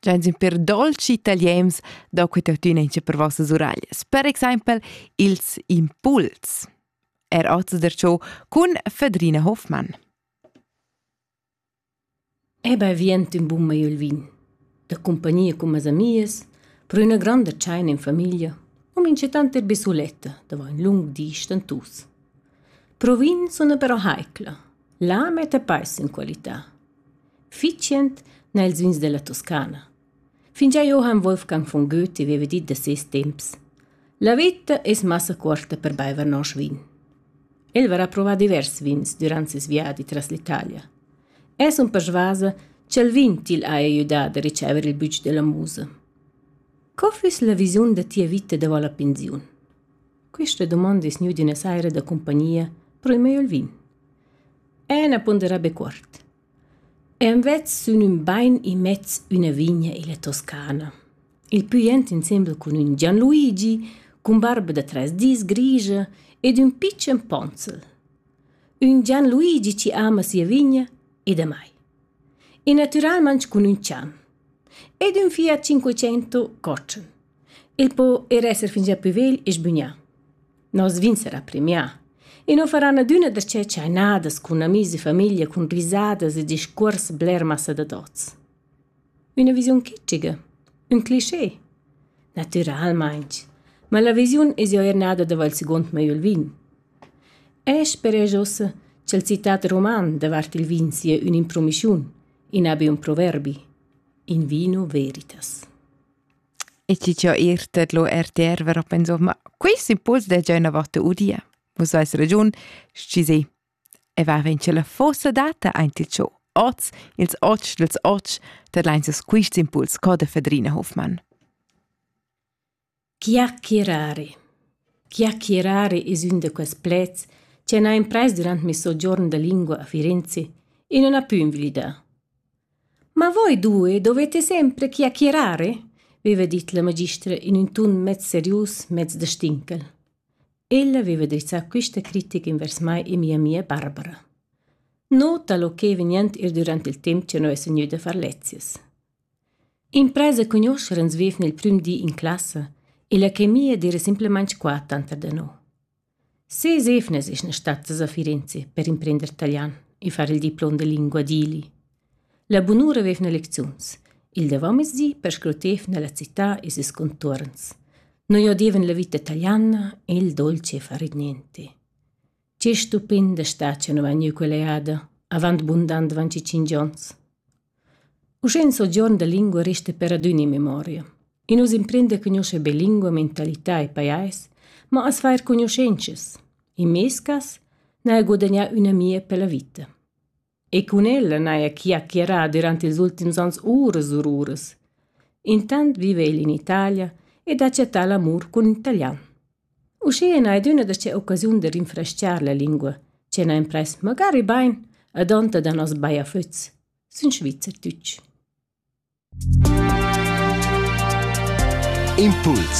Gianzi per dolci italiens do que tuttina incha per vossas uraglias. Per exempel ils impuls. Er oz derciò cun Fedrina Hoffmann. Eba vient in bun maiu il vin. Da compagnia con mas amias, pro üna granda tscheina in famiglia, o mincetant er bisuletta, davo un lung di stantus. Pro vin suna però heicla. La mette peis in qualità. Fitschend n'ha ils ins dalla Toscana. Fingià Johann Wolfgang von Goethe veva dit da ses temps: La vita es massa cuorta per baiver nosch vin. El varà provà divers vins durant ses viadi tras l'Italia. Es un persvasa cha'l vin til haja gnüdà da ricever il bütsch della musa. Co füss la visiun da tia vita davo la pensiun? Quista dumonda es gnüda üna saira da cumpagnia pro il meglio il vin. Ena pondera be cuort. Envers sün ün bain immez üna vigna illa Toscana. Il pü jent insembel cun ün Gianluigi, cun barba da trais dis grigia ed ün pitschen ponzel. Ün Gianluigi chi ama sia vigna e damai. E natüralmaing cun ün chan. Ed ün Fiat Cinquecento cotschen. Il po era esser fingià plü vegl e sbügnà. Nos vin sarà premià e non faran adüna da che chainadas cun amis e famiglia cun risadas e discuors bler massa da tots. Üna visiun kitschiga, ün cliché, natüralmaing, ma la visiun es eau eir nada dava'l seguond mei il vin. Esch speresch uossa cha'l citat roman davart il vin sia ün'impromischiun, in abi un proverbi, in vino veritas. E ti già ir det lo RTR ver a pensar, ma quest impuls de già una volta udia. Vus hai ragiun, schi sì. E va ven che la fossa data aint il ciò. Oz, ils otg dels otg, dat leinses quist impuls co de Fedrina Hofmann. Chiacchierare. Chiacchierare es ün de quels plets che n'ha impress durant mi soggiorn de lingua a Firenze e non ha più invilidà. Ma voi due dovette sempre chiacchierare, veva dit la magistra in ün ton mez serius, mez da stinchel. Ella veva drizzà quista critica invers mai e mia amia Barbara. Nota lo che vegniand eir durant il temp cha noi essan gnüda a far lezias. Impresa cugnuoscher ans vevna il prüm di in classa e la chemia d'eira simplamaing qua tanter da no. Ses evnas eschan stattas a Firenze per imprender talian e far il diplom da lingua dili. La bunura vefna lecziuns. Il davomezdi perscrutevna la cità e ses contuorns. Noi odevan la vita taliana e il dolce far ir niente. Che stupenda stad che nu vegniu quella jada, avant bundant van ci cingions. Uschè ün sogiorn da lingua resta per adüna in memoria. I nu's imprenda cugnuoscher be lingua, mentalità e pajais, ma as fair cugnuschentschas. In meis cas n'haja gudagnà ün'amia pella vita. E cun ella n'haja chi ha chierà durant ils ultims ans uras e uras. Intant viva el in Italia ed ha chattà l'amur cun italian. Uschia n'hai dunna da sia occasiun da rinfrestgar la lingua, che n'ha imprais magari bain ad onta da noss baiaflüts, sun svizzertütsch. Impuls